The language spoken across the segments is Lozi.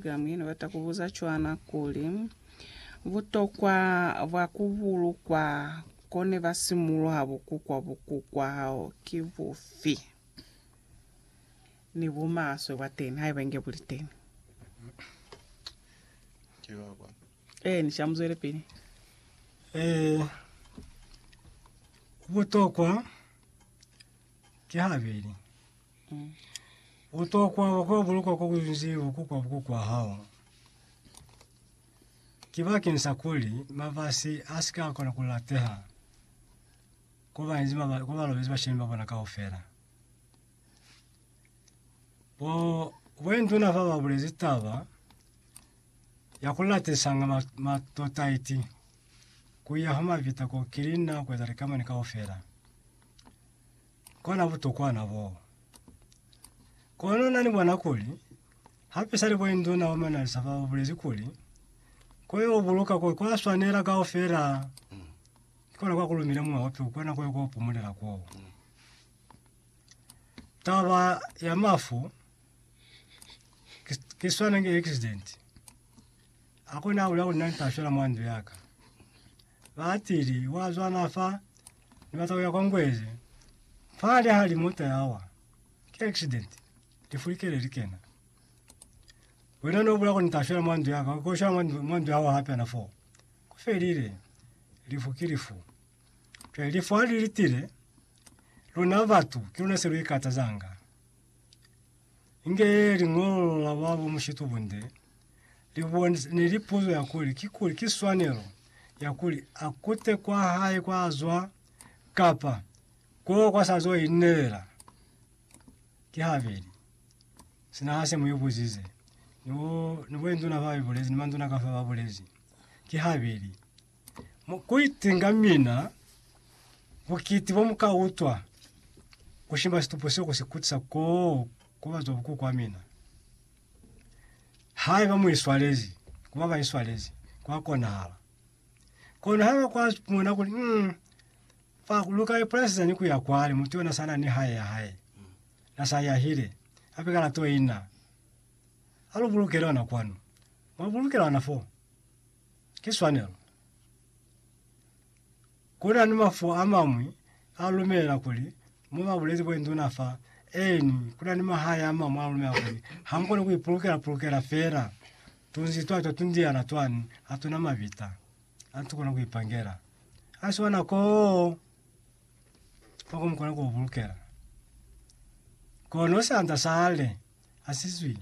Mi Ni bata ku buza cwana kuli, butokwa bwa ku bulukwa ko ne ba simuluha bukukwa bukukwa hao ki bufi, ni bumaswe bwa teni haiba inge bu li teni? Ki ba ba. Ee, ni ca muzwelepili. Eh, butokwa Kihabeli, u tokwa kwa bulukwa kwa kunzi bukukwa bukukwa hao. Ki bakeng sa kuli mabasi a si ka kona ku lateha ko banzi maba- ko balobezi bashemi ba bona kaufela. Bo boinduna fa ba bulezi taba ya ku latisanga ma- matotaiti ku ya ha mabita ko kilinna ku eza likamani kaufela. Kona butokwana bo. Kono nani bona kuli, hape sali bo induna wa manalisa ba bulezi kuli, ko yo buluka ko kwa swanela kaufela. Kona kwa kulumile mwa wapi ukona ko yo ko pumulela ko. Taba ya mafu, ke swana nge accident. Akona ula una nta shwela mwa ndu yaka. Baatili, wa zwana fa, ni bata kuya kwa Ngwezi. Fa li hali mota ya wa. Ki accident. Lifu li kele li kena. Wena no bula kuni ta shwela mwa ndu ya ka, ko shwela mwa ndu- mwa ndu ya wa hape na fo. Ku felile. Lifu ki lifu. Cwale lifu hali litile, luna batu, ki luna se lu ikatazanga. Inge liñolo la babo mushitubunde libone ne li puzo ya kuli ki kuli ki swanelo ya kuli a kute kwa hae kwa zwa kapa ko kwa sa zo inelela ki habeli sina ha se mo ibuzize no no bo induna ba ibulezi ni manduna ka fa ba bulezi ki habeli Mu kuitinga mina, bukiti bo mu ka utwa ku shima situpo seo ku si kutisa koo ku bazwa bukuku wa mina. Haiba mu iswalezi ku ba ba iswalezi, kwa konahala. Kono haiba kwa mona kuli, mm, fa lu ka ipulasi zani ku ya kwale, mutu yona sana ni hae ya hae, na sa yahile, hape ka lato ina, alu bulukele ona kwanu, mwa bulukela ona fo. Ki swanelo. Ku na ni mafu a mañwi a lumela kuli mo ba bulezi kuli nduna fa, eeni, ku na ni mahae a mañwi a lumela kuli ha mu koni ku ipulukela-pulukela fela tunzi twa twa tundiana twani ha tu na mabita a tu kona ku ipangela. Ha si ona koo kwa ku mu kona ku bulukela. Kono sianda sale ha si zwi,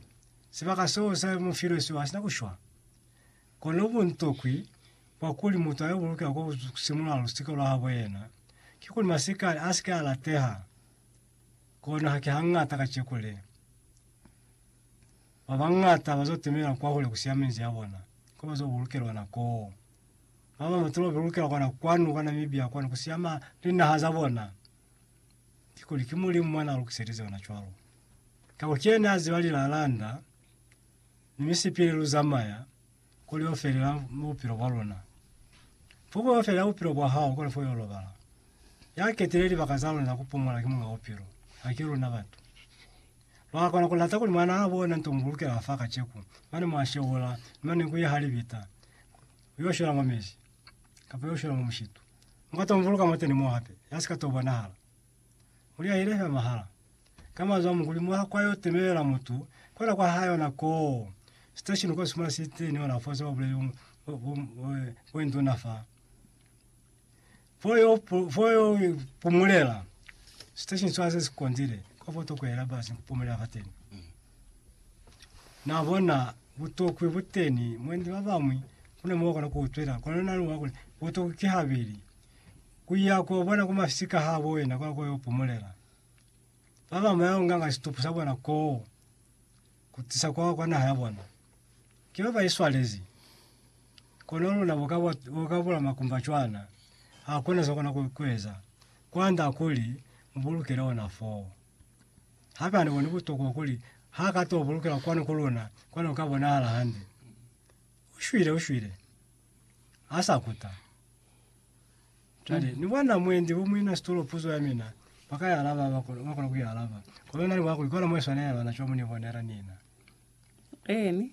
sibaka seo se mu filwe sio ha si na ku shwa. Kono buntokwi bwa kuli mutu a yo bulukela kwa ku simula lusika lwa habo yena, ki kuli masikani a si ke a lateha. Kono haki hañata kaceku le, ba bañata ba zo timela kwahule ku siya minzi ya bona, ko ba zo bulukelwa na koo. Ba ba mutu ba bulukelwa kona kwanu kwa Namibia kwanu ku siya ma linaha za bona, ki kuli ki Mulimu mwa na lukiselize ona cwalo, kakuli ki yena ya ziba lilalanda ni misipili lu zamaya kuli yo felela mu bupilo bwa luna. Pupo yo felela bupilo bwa hao kuli fo yo lobala. Ya ketile libaka za luna za ku pumula ki Muñ'a Bupilo, haki luna batu. Lwa kona ku lata kuli Mwan'a habo ona nto mu bulukela fa kaceku, mane mwa shewula, ni mane ku yeha libita, ku yo shwela mwa mezi, kapa yo shwela mwa mushitu. Mu ka to mu buluka mwateni mo hape, ya si ka to bonahala. Muli ya ile fela mahala. Ka manzwi a mukuli, mwaha kwa yo temelela mutu kwela kwa hae ona koo. Station kwa sumana si teni ona fo se ba buleli bo nduna fa. Fo yo fo yo pumulela. Station swa se sikondile kwa fo to kwela ba si pumulela fa teni. Na bona butokwi buteni mwendi ba bamwi kuna mo kona ku utwela kona na lwa kule butokwi ki habeli. Ku ya ku yo bona ku masika ha bo ena kwa ku yo pumulela. Ba ba maya unganga situpu sa bona koo, ku tisa kwa, kwa naha ya bona. Ki ba ba i swalezi. Kono luna bo ka, bo ka bula makumba cwana, ha kuna se kona ku, ku eza, kwand'a kuli mu bulukele ona foo. Hape ha ni boni butokwa kuli ha ka to bulukela kwanu ku luna, kwani u ka bonahala hande. U shwile, u shwile. ha sa kuta. Cwale, ni bona mwendi bo muina situlo puzo ya mina, ba ka i alaba ha ba kono, ba kona ku i alaba. Kono na ni bona kuli kona mo i swanela yona, cwale mu ni bonela nina. Eeni,